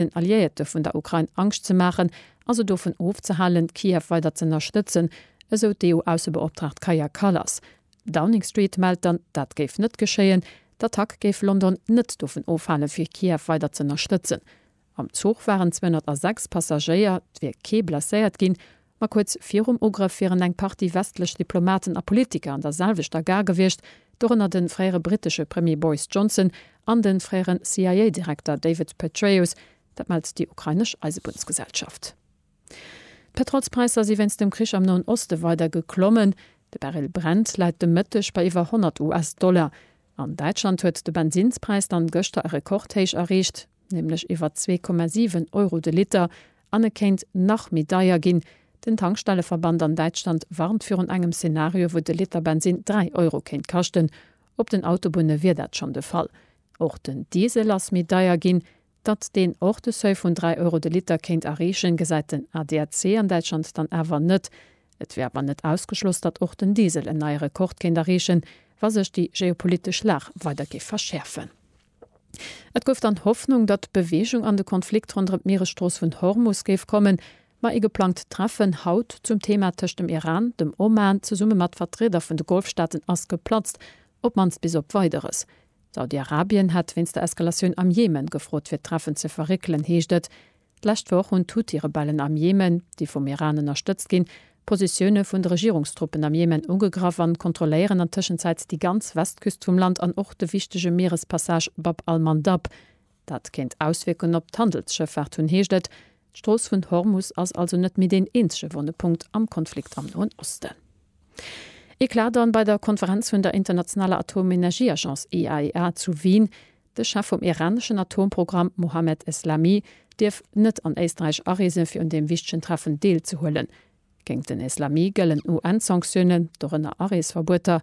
den Alliéierte vun der Ukrain Angscht ze maachen a se dovun ofzehalen, Kiew weider z'ënnerstëtzen, esou d'EU-Aussebeoptraagt Kaja Kallas. Downing Street mellt dann, dat géif net geschéien. D'Attack géif London net dovun ofhalen, fir Kiew weider z'ënnerstëtzen. Am Zuch waren 206 Passagéier, et wier kee blesséiert ginn. Ma kuerz virum Ugrëff wieren eng Partie westlech Diplomaten a Politiker an der selwechter Gare gewiescht, dorënner de fréiere brittesche Premier Boris Johnson an de fréiere CIA-Direkter David Petraeus. Dat mellt déi ukrainesch Eisebunnsgesellschaft. D'Petrolspräisser si wéinst dem Krich am Noen Oste weider geklommen. De Barrel Brent läit de Mëtteg bei iwwer 100 US-Dollar. An Däitschland huet de Bensinnspräis dann gëschter e Rekordhéich erreecht. nämlech iwwer 2,7 Euro de Liter, an e kéint nach méi deier ginn. Den Tankstelleverband an Däitschland warnt virun engem Szenario, wou de Liter Bensinn 3 Euro kéint kaschten. Op den Autobunne wier dat schonn de Fall. Och den Diesel ass méi deier ginn. Datt deen och de Seuil vun 3 Euro de Liter kéint erreechen, gesäit den ADAC an Däitschland dann awer net. Et wier awer net ausgeschloss, datt och den Diesel en neie Rekord kéint erreechen, wa sech déi geopolitesch Lag weider géif verschäerfen. Et gouf dann Hoffnung, datt Beweegung an de Konflikt ronderëm d'Mieresstrooss vun Hormus géif kommen, ma ee geplangt Treffen haut zum Thema tëscht dem Iran, dem Oman zesumme mat Vertrieder vun de Golfstaaten ass geplatzt, op mannst bis op Weideres. Saudi-Arabien hätt wéinst der Eskalatioun am Jemen gefrot fir d'Treffen ze verréckelen, heescht et. D'lescht Woch hunn d'Huthi-Rebellen am Jemen, déi vum Iran ënnerstëtzt ginn, d'Positioune vun de Regierungstruppen am Jemen ugegraff an kontrolléieren an Tëschenzäit déi ganz Westküst vum Land an och de wichtege Mierespassage Bab al-Mandab. Dat kéint Auswierkungen op d'Handelsschëffaart hunn, heescht et. D'Strooss vun Hormus ass also net méi deen eenzege wonne Punkt am Konflikt am Noen Osten. Eclat dann bei der Konferenz vun der internationaler Atomenergieagence IAEA zu Wien. De Chef vum iraneschen Atomprogramm Mohammed Eslami dierf net an Éisträich areesen, fir un deem wichtegen Treffen deelzehuelen. Géint den Eslami gëllen UN-Sanktiounen, dorënner Areesverbueter.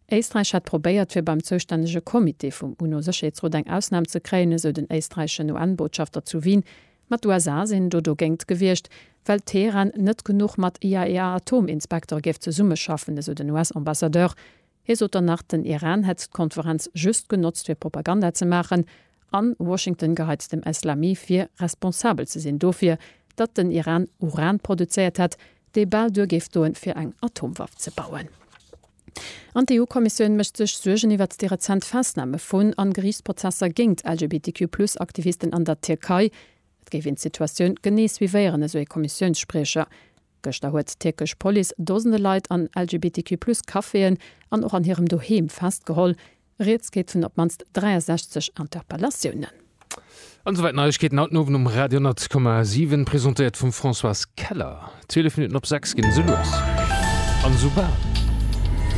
Éisträich hätt probéiert, fir beim zoustännege Comité vum UNO-Sécherheetsrot eng Ausnam ze kréien, esou den éisträicheschen UN-Botschafter zu Wien. Ma d'USA sinn do dogéint gewiescht, well Teheran net genuch mat IAEA-Atominspektere géif zesummeschaffen, esou den US-Ambassadeur. Hie sot dann nach, den Iran hätt d'Konferenz just genotzt fir Propaganda ze maachen a Washington geheit dem Eslami vir, responsabel ze sinn dofir, datt den Iran Uran produzéiert hätt, dee bal duer géif doen, fir eng Atomwaff ze bauen. An d'EU-Kommissioun mécht sech Suergen iwwert déi rezent Festname vun an Geriichtsprozesser géingt LGBTQ-Plus-Aktivisten an der Tierkei. Et géif een d'Situatioun genee suivéieren, esou ee Kommissiounsspriecher. Gëschter huet d'tierkesch Police Dosende Leit an LGBTQ Plus Caféen an och an hirem Doheem festgeholl. Rieds geet vun op d'mannst 63 Interpellatiounen. An esouwäit Neiegkeeten haut den Owend um Radio 100,7, presentéiert vum Françoise Keller. 12 Minutten op 6 ginn esou lues an esou bal.